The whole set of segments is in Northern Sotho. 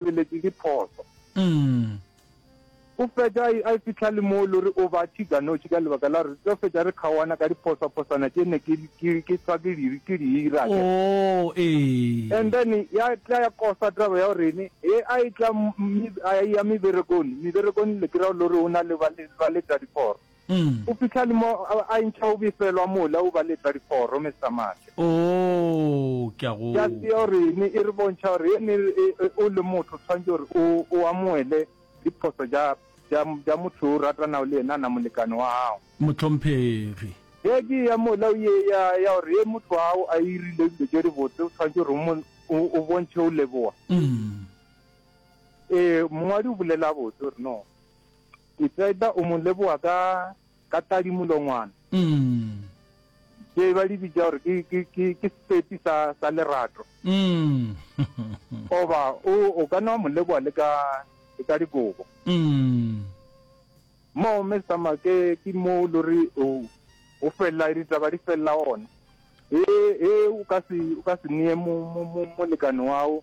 tšweletše diphoso. Go fetša a e fihla le moo e le gore o ba tšhiganoši ka lebaka la gore re tlo fetša re kgaoana ka diphosaphosana tše ne ke tshwa ke di ke di ira. And then ya tla ya kosa taba ya gore ene e a e tla a ya meberekong, meberekong le kry-a le gore o na le ba ba letša diporo. O fihla le mo a ntšha o befelwa mola o ba letsa diforo mesamake. Oo, ke a go. Ya se o re ne e re bontšha gore e ne o le motho tshwanetse gore o o amoele diphoso ja ja ja motho o ratanago le yena na molekane wa gago. Mohlomphegi. Ge ke ya mola o ye ya ya gore ye motho wa gago a irile dilo tše di botse o tshwanetse gore o mo o bontšhe o leboga. Ee, mongwadi o bolela botse gore no. Ke tseba o mo leboga ka, ka tadimolongwana. Tše ba di bitša gore ke, ke, ke, ke sepepi sa, sa lerato. Goba o, o ka no mo leboga le ka, le ka dikobo. Moo, Mme Summer, ke, ke moo e lego gore o, o felela, ditaba di felela gona. Ge, ge o ka se, o ka se neye mo, mo, mo, molekane wa gago.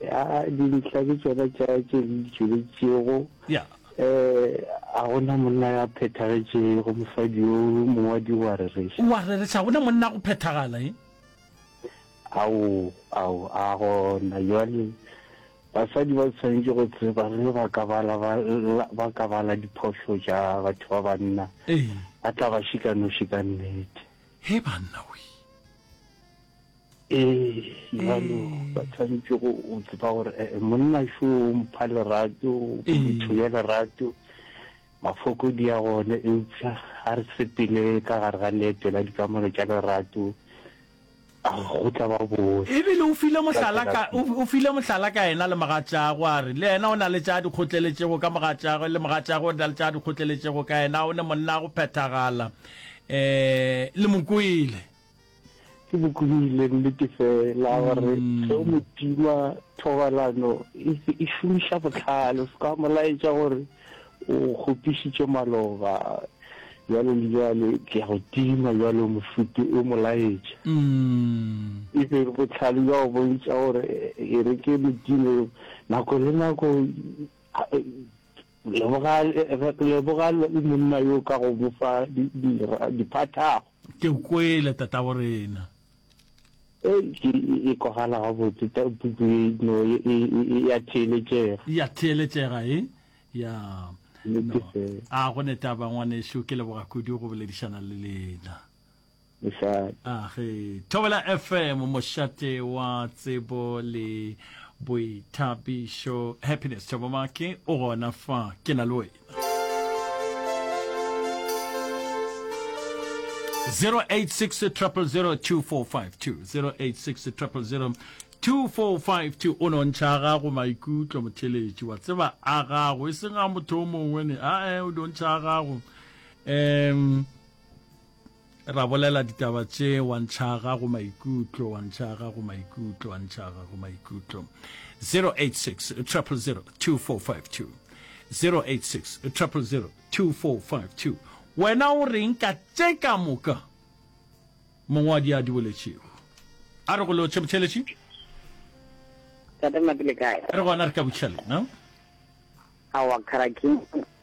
ya dintlha ke tsona tša tše re di tšweletšego ya um a gona monna ya phethagetšego mosadi yo mongwadi o a rereša o a rereša gona monna go phethagala e ao ao a gona jwale basadi ba tshwanetse go tseba ge ba ka bala ba la- ba ka bala diphošo tša batho ba banna ee ba tla ba šikanoši ka nnete he banna we ee jalo ba tshwanetse go tseba gore eh, eh, monna šo o mpha lerato motho ya lerato mafoko di ya gone eupša ga re sepele ka gare ga leeto la dikamano tša lerato go tla ba boe ebile o file mohlala ka o file mohlala ka ena le mogatšago a re le ena o na le tša dikgotleletšego ka mogatšago le mogatšago o na le tša dikgotleletšego ka ena o ne monna go phethagala um le mokwele Ke bokubile nnete fela gore ge o motima thobalano e šomiša botlhale o se ka molaetša gore o kgopišitše maloba jalo le jalo ke ya go tima jalo mofuti o molaetša mm. e be botlhale jwa go bontša gore e re ke modimo nako le nako leboga monna yo ka go bofa diphathago Ke o kwele, tatabo rena. Ei, ke e kwagala gabotse, ta puku ye no e, e, ya theeletšega. Ya theeletšega, e? Ya. No. A go ne taba ngwanešu, ke leboga kudu go boledišana le lena. Mošate. A ge Thobela FM, mošate wa tsebo le boithabišo. Happiness Thobomake o gona fa, ke na le wena. Zero eight six triple zero two four five two zero eight six triple zero 2452 o nontšha gago maikutlo motheletši wa tseba a gago e seng ga motho o mongwe ne ae o nontšha gago um Ra bolela ditaba tše, wa ntšhaga go maikutlo, wa ntšhaga go maikutlo, wa ntšhaga go maikutlo. 086 000 2452 086 000 2452 Wena o reng ka tše ka moka mongwadi a di boletšego? A re go lotšhe botheletši? Re gona re ka butšha lena. Awa Karaking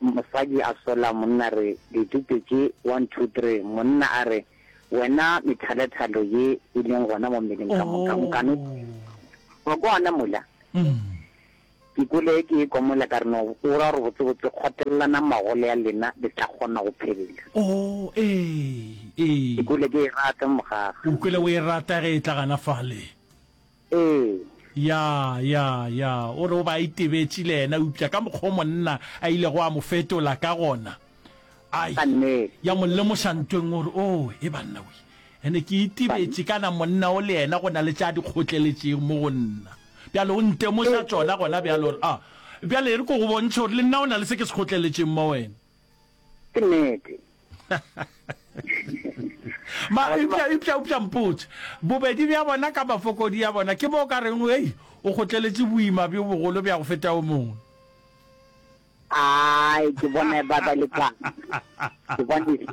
Mosadi a sola monna re ditute tše one two three, monna a re wena methalethalo ye e leng gona mo mmeleng ka moka nkane wa kwana mola. Ke kwele ke e kwa mola ka re no o ra gore botsebotse kgotelelana magole ya lena le tla kgona go phelela. Ke kwele ke e rata mogaga. O kwele o e rata ge e tla gana fale. Ee. Ya, ya, ya. O re o be a itebetše le yena, eupša ka mokgwa wo monna a ilego a mo fetola ka gona, a Ka nnete. ya mo lemoša ntho e nngwe gore, Oo, e banna we! And-e ke itebetše kana monna wo le yena go na le tša a di kgotleletšego mo go nna. Bjale o ntemoša tšona gona bjale gore, A, bjale e re ke go bontšhe gore le nna go na le se ke se kgotleletšeng mo go wena. ke nnete ma ipša ipša ipša mpotse bobedi bja bona ka mafokodi ya bona ke bo ka reng ei o gotleletše boima bjo bogolo bja go feta o mongwe ai ke bona ba ba le ka ke bona e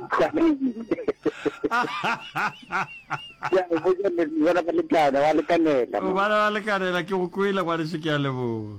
ya go bona ba le ka ba le kanela ba le kanela ke go kwela kwa re se ke a leboga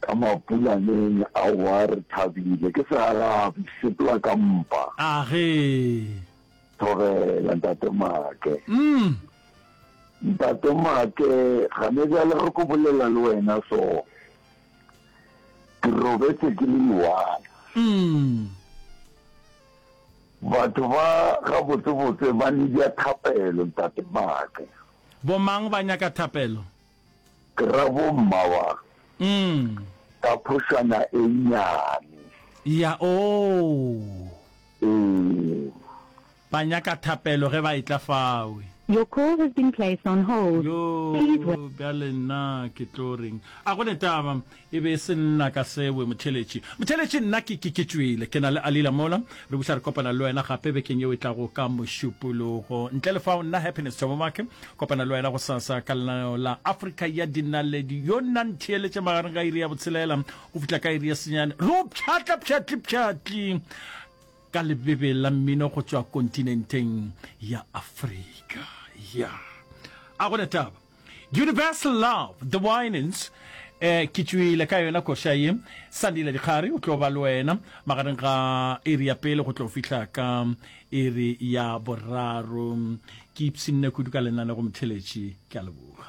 Ka mapulaneng aowa re thabile ke searabe sepela ka mpa. A ge. Thobela ntate Make. Umm. Ntate Make gane bjale re ko bolela le wena so ke robetse ke le iwana. Umm. Batho ba gabotsebotse ba nebja thapelo ntate Make. Bomang ba nyaka thapelo? Ke ra bo mma wa ka phošwana e nnyane. Ya oo. Ee. Ba nyaka thapelo ge ba etla fawe. Your call has been placed on hold. Yoo, bjale nna ke tlo reng? A go ne taba. E be e se nna ka sewe, Motheletši. Motheletši, nna ke, ke, ke tšwele. Ke na le Alila mola. Re buša re kopana le wena gape bekeng yeo e tlago ka Mošupologo. Ntle le fao, nna Happiness Thobomake, kopana le wena gosasa ka lenaneo la Afrika ya Dinaledi. Yo nna ntheeletše magareng ga iri ya botshelela go fihla ka iri ya senyane. Re o pšhatla pšhatli-pšhatli ka lebebe la mmino go tšwa kontinenteng ya Afrika. Ya. A go na taba? Universal Love, The Winans, eh, ke tšwile ka yona koša ye. Sandile Dikgari o tlo ba le wena magareng ga iri ya pele go tlo fihla ka iri ya boraro. Ke ipsinne kudu ka lenaneo go motheletši, ke a leboga.